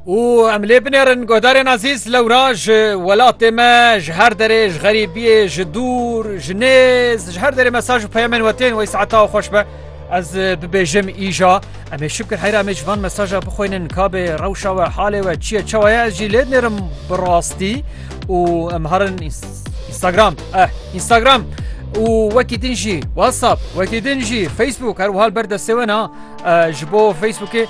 û em lê binêrin guhdarên ezîz lewra ji welatê me ji her derê ji xerîbiyê ji dûr ji nêz ji her derê mesaj û peyemên we tên wey saeta xweş be ez bibêjim îja em ê şikir heyra em ê ji van mesaja bixwînin kabê rewşa we halê we çiye çawa ye ez jî lê dinêrim bi rastî û em herin Instagram eh Instagram û wekî din jî WhatsApp wekî din jî Facebook her wiha li ber destê we ne ji bo Facebookê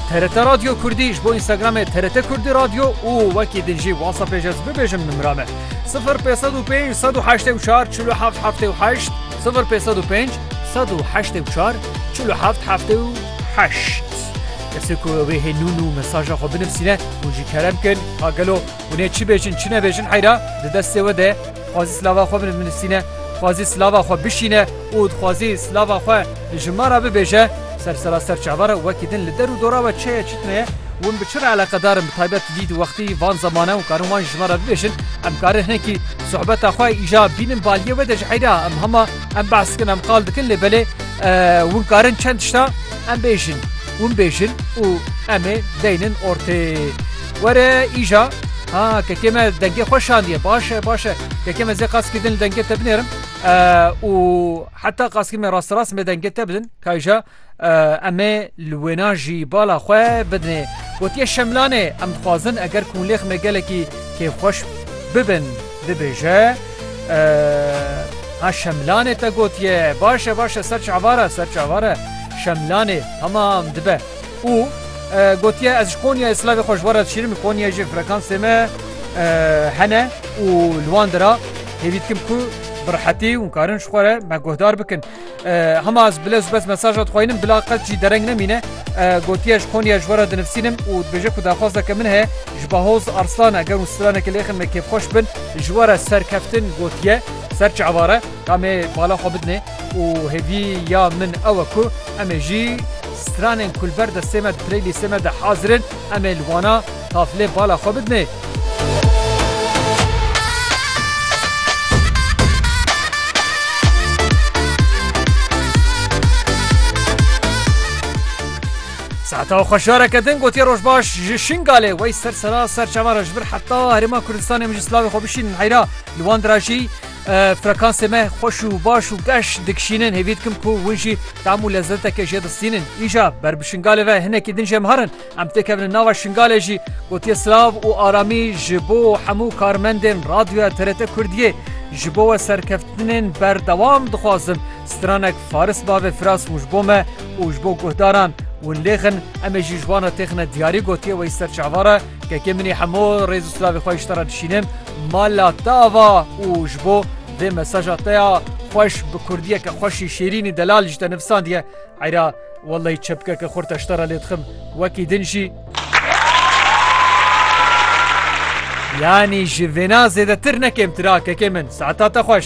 TRT Radyo Kurdî ji bo Instagramê TRT Kurdî Radyo û wekî din jî WhatsAppê ji ez bibêjim nimra me 0505 184 47 78 0505 184 47 78 Kesê ku wê hê nûn û mesaja xwe binivîne û jî kerem kin ha gelo hûnê çi bêjin çi nebêjin heyra di destê we de xwazî silava xwe binivîne xwazî silava xwe bişîne û dixwazî silava xwe Ji ma re bibêje, ser seraser çavar e û wekî din li der û dora we çi ye çi tune ye, hûn bi çi re eleqedar in bi taybet vî wextî, van zemane û karin wan ji me re bibêjin, em karin hinekî sohbeta xwe îja bînin bi aliyê we de ji heyra em hema em behs dikin em qal dikin lê belê hûn karin çend tişta em bêjin, hûn bêjin û em ê deynin ortê. Were îja ha kekê me dengê xwe şandiye baş e baş e kekê me zê qas kî din li dengê te binêrim û. Heta qaskî me rasterast me dengê te bidin kayja em ê li wêna jî bala xwe bidinê. Gotiye Şemlanê em dixwazin eger kûnlêx me gelekî kêfxweş bibin dibêje ha Şemlanê te gotiye başe başe ser çavare ser çavare Şemlanê tamam dibe û gotiye ez ji Konyayê silavê xwe ji we re dişîrim Konyayê jî frekansê me hene û li wan dira Hêvî dikim ku bi rehetî hûn karin ji xwe re me guhdar bikin. Hema ez bilez bez mesaja dixwînim bila qet jî dereng nemîne. Gotiye ji Konya ji we re dinivîsînim û dibêje ku daxwazeke min heye ji Bahoz Arslan e ger û stranekî lêxin me kêfxweş bin. Ji we re serkeftin gotiye ser çi eware ka me bala xwe bidinê û hêvî ya min ew e ku em ê jî stranên ku li ber destê me di playlîstê me de hazir in em ê li wana Taflên pala xwe bidinê. Seta xweşareke din gotiye rojbaş ji Şingalê wey ser sera ser çavara ji vir heta herêma Kurdistanê min ji slavê xwe bişînin heyra li wan dira jî frekansê me xweş û baş û geş dikişînin hêvî dikim ku hûn jî tam û lezzeteke jê distînin îja ber bi Şingalê ve hinekî din jê miharin Em têkevin nava Şingalê jî gotiye silav û aramî ji bo hemû karmendên Radyoya TRT Kurdiyê. Ji bo we serkeftinên berdewam dixwazim stranek faris bavê firas û ji bo me û ji bo guhdaran win lêxin em ê jî ji wana têxine diyarî gotiye wê ser çava re kekê min ê hemû rêz û silavê xwe ji te re dişînim mala te ava û ji bo vê mesaja te ya xweş bi kurdiyeke xweşî şêrînî delal ji te nivisandiye eyra Wellay çepkeke xurt eşta re lê dixim wekî din jî yanî ji vêna zêdetir ne kêmtir a kekê min saeta te xweş.